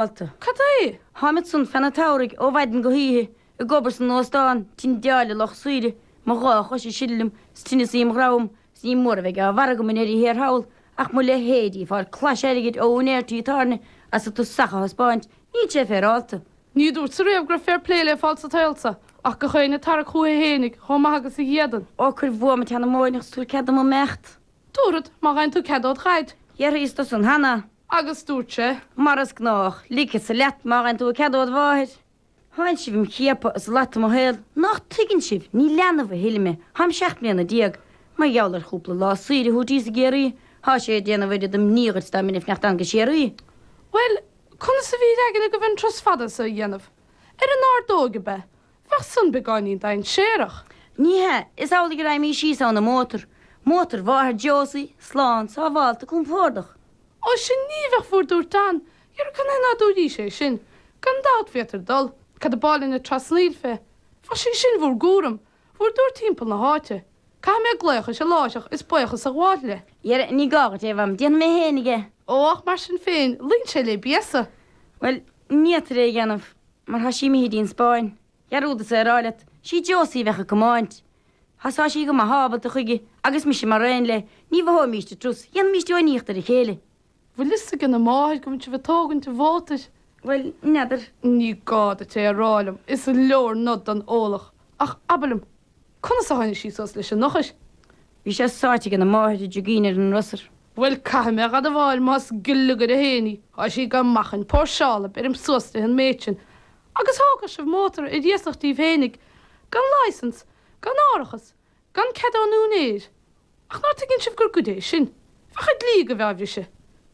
Alta. Cad é? Tháim ansan fan an tsamhraidh ó mhaidin go hoíche, ag obair san óstán, ag tindeáil ar lucht saoire, mo dhá chois ag sileadh liom, 's tinneas im dhroim, 's ní mór a bheidh á bharr agam i ndeireadh thiar thall, ach mo leithéidí ag fáil clais airgid ó úinéir tí tábhairne as a tosach a thaispeáint, níl sé féaráilte. Ní dúrtsa riamh go raibh féar plé le fáil sa tsaol so, ach gach éinne ag tarrac chúiche fhéinig, chomh maith agus a dh'fhéadann. Ó, cuir bhuaim an tseanmóireacht 's tabhair cead dom imeacht. Tabharfad, má gheibheann tú cead ód Dhaid. D'fhiafraíos de san cheana. Agus dúirt sé. Mar is gnách, ligfeadsa leat má gheibheann tú cead ód mháthair. Thánn sibh im' chiapadh is ag lot mo shaol. Nach dtuigeann sibh, ní leanbh a thuilleadh mé, táim seacht mbliana déag. Mar gheall ar chúpla lá saoire thíos i gCiarraí, thá sé ag déanamh oiread d'imní ort dá mbeinn ag imeacht anonn go Siria. Bhuel, conas a bhí ar aigne agaibh an trus fada so a dhéanamh? Ar an ordóig, ab ea, Bheadh san beagáinín dainséarach. Ní hea, is amhlaidh a raghaimís síos ann i mótar, mótar mháthair Josie, slán, sábhálta, compordach. Ó, 'sí sin a bheadh bhur dtabhairt ann, dhera, canathaobh ná dúraís é sin. Gan dabht féadfair dul, cad a b'áil linn ag trasnaíl fé. Beidh sí sin in bhur gcúram, bhur dtabhairt thimpeall na háite. Caithfidh mé glaoch uirthi láithreach is baochas a ghabháil léi. Dhera, ní gá dhuit é, mham, déanfaidh mé féinig é. Ó, ach mar sin féin, luíonn sé le béasa. Bhuel, ní fhéadfair é a dhéanamh. mar thá sí imithidh dtí'n Spáinn. Dhearúdas é a rá leat, 'sí Josie a bheadh ag comáint. Thá sí go maith ábalta chuige agus mise mar aon léi, ní mhothóimíst an trus, dhéanfaimíst uainíocht ar a chéile. Bhfuil fhios aigena máthair go bhfuil sibh ag tógaint an mhótair? Bhuel, n'fheadar. Ní gá duit é a rá liom, is leor nod don eolach. Ach abair liom, Conas a tháinig sí suas leis an eochair? Bhí sé sáite ag an máthair i dtigín ar an ndrosar. Bhuel, caithfidh mé a dh'admháil, más gliogaire féin í, tá sí go maith chun póirseála. Bheirim suas di an méid sin. Agus thógfadh sibh mótar ar iasacht díbh fhéinig, gan license, gan árachas, gan cead ón úinéir. Ach ná tuigeann sibh gur goid é sin? Bheadh an dlí agaibh á bhriseadh.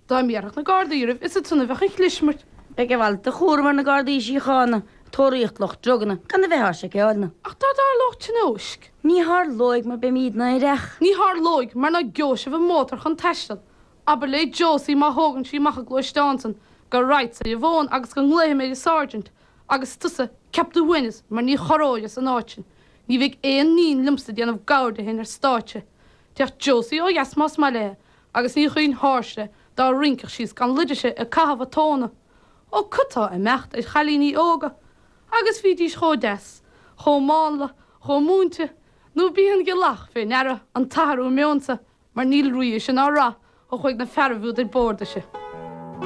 Dá mbéarfadh na Gardaí oraibh is ansan a bheadh an chlismirt. Beidh a mhalairt de chúram ar na Gardaí Síochána, tóraíocht lucht druganna, gan a bheith ár seiceáilne. Ach dá dtarlódh tionóisc? Ní tharlóidh mar beimídne aireach. Ní tharlóidh mar ná geobhaidh sibh an mótar chun taisteal. Abair le Josie má thógann sí amach a gluaisteán san go raghadsa ar an bhfón agus go nglaofaidh mé ar an sergeant agus tusa ceap do shuaimhneas mar ní chorróir as an áit sin. Ní bheidh aon iníon liomsa ag déanamh gabhar di fhéin ar stáitse. Téadh Josie ó dheas más maith léi agus ní chuirfinn thairsti dá rinceadh sí is gan luid uirthi ag caitheamh a tóna. Ó cad tá ag imeacht ar chailíní óga agus bhídís chomh deas, chomh mánla, chomh múinte, nó ab í an ghealach fé ndeara an t-athrú meoin so mar níl rí uirthi sin ná rath ó chuaigh na fearaibh úd ar bord uirthi.